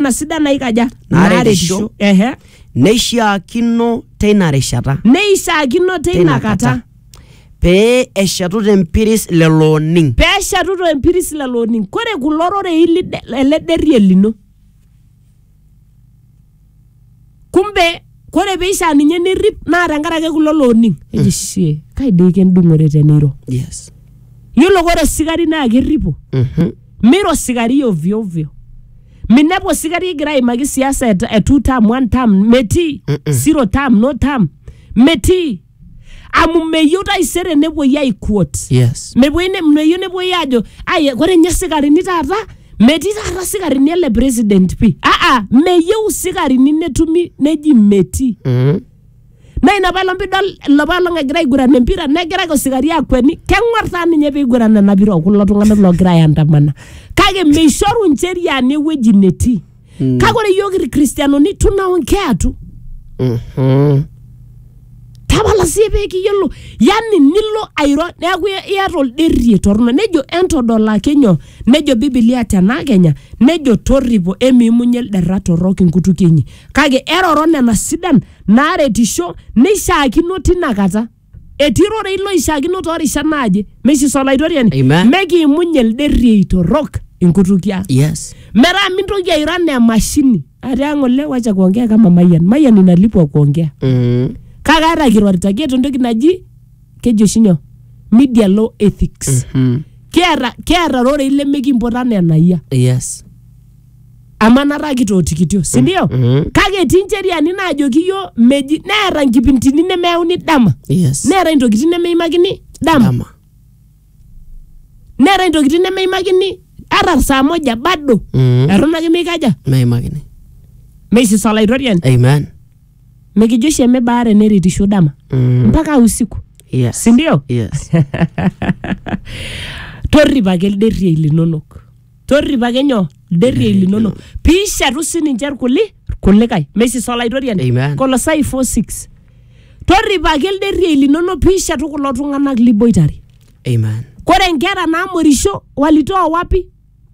na sidan naikaja Naaretisho. naaretisho ehe neishiakino teina rishata neishaakino teina kata pee eshetu tempiris lelo oning peeshetu tempiris lelo oning kore kulo rorei lide- ele derrie lino kumbe kore peishaa ninye nirrip naa tenkarake kulo looning eji shie kai dei kendung'ore teniro yes yiolo kore osikari naa kerripo Mhm. mira osikari ovyo ovyo minepu osikari egira aimaki siasa e, e two term one term metii zero term no term metii amu meyieu taisere nepuoi aikuot yes mepuoi ne- meyieu nepuoi aajo ai ore ninye sikarini taata metii taata sikarini ele president pi aa meyieu sikarini netumi neji metii Mhm. naa ina paelong pidol ilapa olong egira aiguran empira negira ake osikari akueni keng'or taa ninye piguran ena pira okulo tung'anak logira aandamana kake meishoru ncheriani ewueji netii Mm. kake ore iyiook irkristianoni tunaongea tu Mhm. tapala sii pee kiyiolo yani nilo airo neeku ia- iata olderie torrono nejo entodolaki nyoo nejo bibilia tena kenya nejo torripo emiimunye ilderra torrok inkutukie inyi kake eroro nena sidan naaretisho neishaakino tinakata etii rorei loishiakino too rishat naaje meishiso olaitoriani Amen. mekiimunye elde riei torrok inkutukie ang Yes. metaa mintoki airo anaa emashini atii ang ole wacha kuongea kama mayian mayian inalipwa kuongea Mm. kake ata kirorita kiata entoki naji keji oshi nyoo media law ethics Mm. kiata kiata rorei lemekimpotu anaa enayia Yes. amanata kitootikitio si ndio Mhm. kake etii ncheriani naajoki iyio meji neeta nkipintini nemeyauni dama yes neetae ntokitin nemeimakini dama dama neetae ntokitin nemeimakini ata saa moja bado Mhm. eton ake meikaja meimakini meisisa olaitoriani amen mikijo oshi emebaare neritisho dama Mhm. mpaka usiku yes si ndio yes torrip ake ilderriei linonok torrip ake nyoo ilderriei linono piishetu sininche irkuli irkulikae mesisa olaitoriani Amen. kolosai 46 torripaki ilderriei linono piishetu kulo tung'anak liboitare Amen. kore nkera namorisho walitoa wapi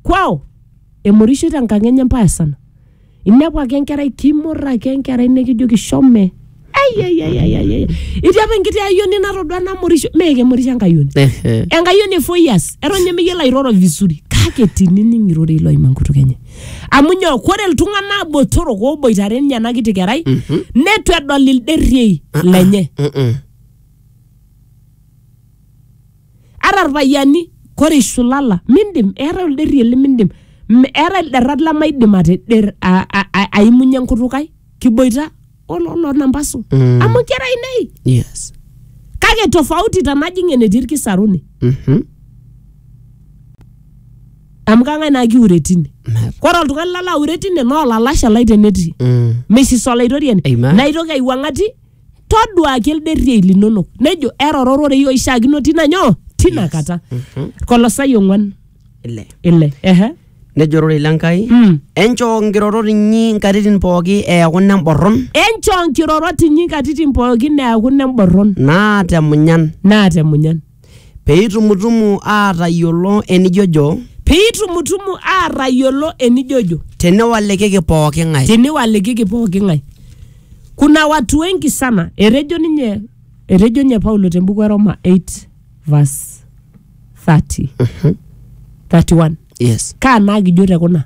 kwao emorishoi tenkang enye mbaya sana inepu ake enkerai timor ake enkerai nikijoki shome Ai, ai, ai, ai, ai, ai. itii apa enkiti ayioni natodua namorisho mee kemorisho enkayioni Ehe. enkayioni e four years eton ninye meyiolo airoro vizuri kake tinining irorei loima enkutuk enye amu nyoo kore iltung'anak botorok oboitare ninye ena kiti kerai netu edol ilderriei lenye Mm-mm. ata irpayiani kore ishulala mindim eetae olderrie limindim M- eetae ilderrat lemaidim ateder a- a- a- aimunye enkutuk ai kiboita olo- lonambasu Mm. amu inkera ainei yes kake tofauti tanajing enetii irkisaruni Mhm. amu kang'ae naa kiure tine Never. kore oltung'ani lalo aure tine naa olalashe lai tenetii Mm. mesis olaitoriani Amen. naitoki aiwuang'ati toduaki ilderriei linonok nejo eroro ororei oishiakino tina nyoo tina Yes. kata Mhm. kolosai ong'uan ile ile ehe nejo ororei lenkai Mm. enchoo nkirorot inyi nkatitin pooki eeku nemborron enchoo nkirorot inyi nkatitin pookin neaku nemborron naata emunyan naata emunyan Peitumutumu aatayiolo enijojo. Peitumutumu aatayiolo enijojo. Teniwalikiki pooki ng'ae. Teniwalikiki pooki ng'ae. Kuna watu wengi sana. Etejo ninye etejo ninye Paulo te mbuku e Roma 8 verse 30. 31. Yes. Kaa naa kijo te kuna?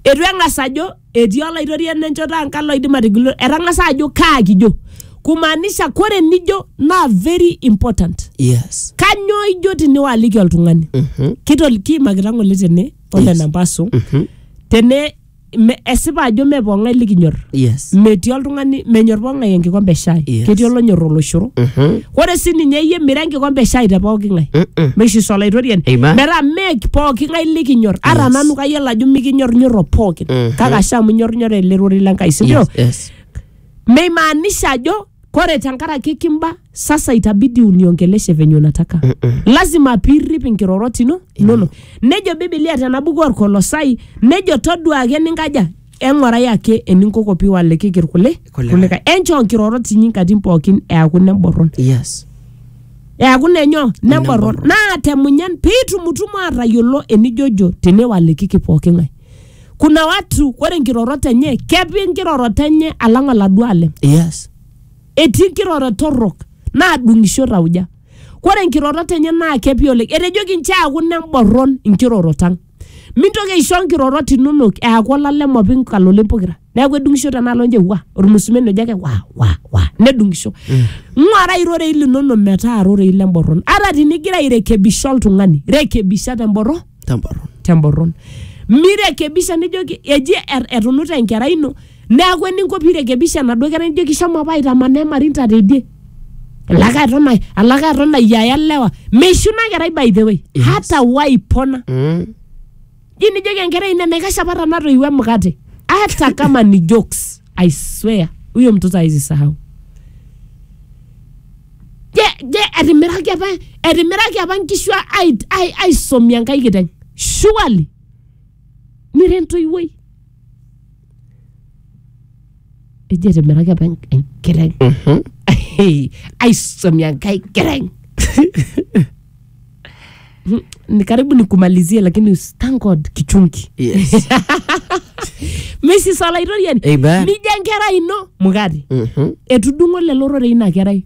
Eitu eng'as ajo etii olaitoriani enchoto ang kalo oidim atigilo etang'asa ajo kaa kijo kumaanisha kore nijo naa very important yes kanyoo ijo tiniwaliki oltung'ani Mhm. kitol kiimakita ng'ole tene pole Yes. nampasu Mhm. tene me- esipa ajo me pong'ae likinyor yes metii oltung'ani menyor pong'ae enkikombe e shai Yes. ketii olonyor oloshoro Mhm. ore sii ninye iyie mira enkikombe eshai te pooki ng'ae Mm-mm. meishiso olaitoriani Amen. metaa mee pooki ng'ae likinyor ata Yes. nanu kayiolo ajo mikinyornyorro pooki Mhm. kake ashe amu inyornyorra ele rorei le Nkai sindio Yes, yes. meimaanisha ajo kore tenkaraki kimba sasa itabidi uniongeleshe venye unataka Mm-mm. lazima piirrip inkirorot ino inono nejo bibilia tena buku orkolosai nejo toduaa ake ninkaja Eng'orai ake eninkoko piwalikiki irkuli Kulikae. kulikae. Enchoo nkirorot inyi nkatitin pookin eaku neborron. Yes. Eaku nenyo neborron. Neborron. Naa te munyan pitumutumu atayiolo enijojo teniwalikiki pooki ng'ae. Kuna watu ore nkirorot enye kepi nkirorot enye alang oladuo alem. Yes. etii nkirorot torrok naadung'isho tauja. Kore nkirorot enye naa kepi oleng. Etejoki nchoo eaku nemborron nkirorot ang. mintoki aisho nkirorot inonok eaku olalem openy kalole pokira neaku edung'isho tenaalo nje wa ormusumen ojo ake wa wa wa nedung'isho ng'uara irorei linono metaa rorei lemborron ata tinigira airekebisha oltung'ani rekebisha temborron temborron temborron mirekebisha nijoki eji er- etunuta enkerai ino neaku eninko piirekebisha enaduo kerai nijoki shomo apa aitamanaa emarinta teidie alake aton ai- alake aton ayiaya lewa meishu ina kerai by the way hata waipona Mm. ji nijoki enkerai ina enaikash apa tanatoiwuo emukate hata kama ni jokes i swear huyo mtoto hawezi sahau je je etimiraki apa etimiraki apa nkishu ai- ai- aisomie enkai kiteng surely mira entoiwuoi eji etimiraki apa en- enkiteng Mhm. aisomia nkae kiteng Mm, ni karibu nikumalizie lakini us- thank god kichungi Yes. mesis olaitoriani Amen. nija nkera ino mukate Mhm. etudung'o lelo rorei ina kerai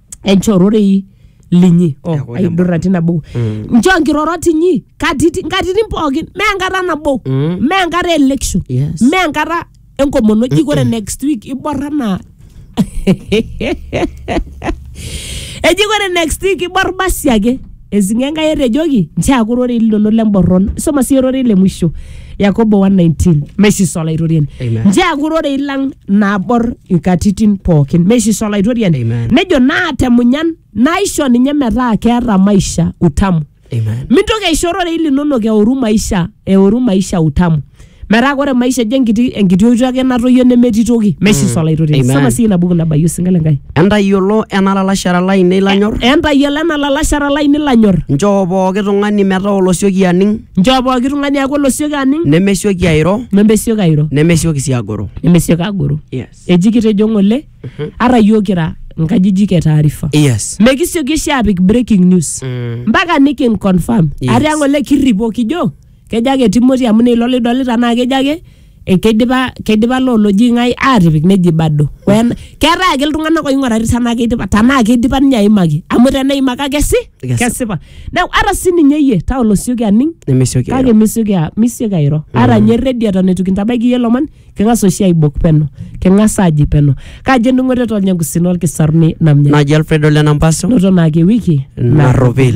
enchoo ororei linyi oh, Eku aidurra tina buku Mm. nchoo nkirorot inyi katiti- nkatitin pookin mee enkata nabo Mm. mee enkata e election Yes. mee enkata enkomono ji kore next week iborra naa eji kore next week ibor basi ake Ezinga Enkai etejoki, nchoo eaku ororei linono lemborron. Isoma siyie ororei le mwisho, Yakobo 1:19. Meisisa Olaitoriani. Amen. Nchoo eaku ororei lang nabor inkatitin pookin. Meisisa Olaitoriani. Amen. Nejo naa te munyan naisho ninye metaa keeta maisha utamu. Amen. Mintoki aisho ororei linonok eoru maisha, eoru maisha utamu. metaa ore maisha ejo enkiti enkiti oitoi ake natoyio nemetii toki meshiso olaitoria Amen. soma sii ina buku nabayie osinka le nkai entayiolo ena lalashera lainei lanyor entayiolo ena lalashara laini lanyor nchoo pooki tung'ani metaa olosioki aning nchoo pooki tung'ani aaku olosioki aning nemesioki airo nemesioki airo nemesioki sii agoro nemesioki agoro yes. eji kitejo ng'ole ata yiok kira nkajijik e taarifa yes. mekisioki oshi apik breaking news Mm. mpaka nikinconfirm Yes. ate ng'ole kirripo kijo kejo ake Timothy amu neilo lidolita naa kejo ake eh, keidipa keidipa loo loji ng'ae aatipik neji bado Wen- keetae ake iltung'anak oing'urari tenaa keidipa tenaa keidipa ninye aimaki amu teneimaki ake si Kesipa. kesipa neeku ata sininye iyie taa olosioki aning nemesioki kake misioki a- misioki airo ata nye redi eton eitu kintabaiki iyie lomon king'as oshi aibok peno king'as aaji peno kaji endung'oto etolnya enkusina olkisaruni namnya naji alfredo lenampaso noto naake wiki narropil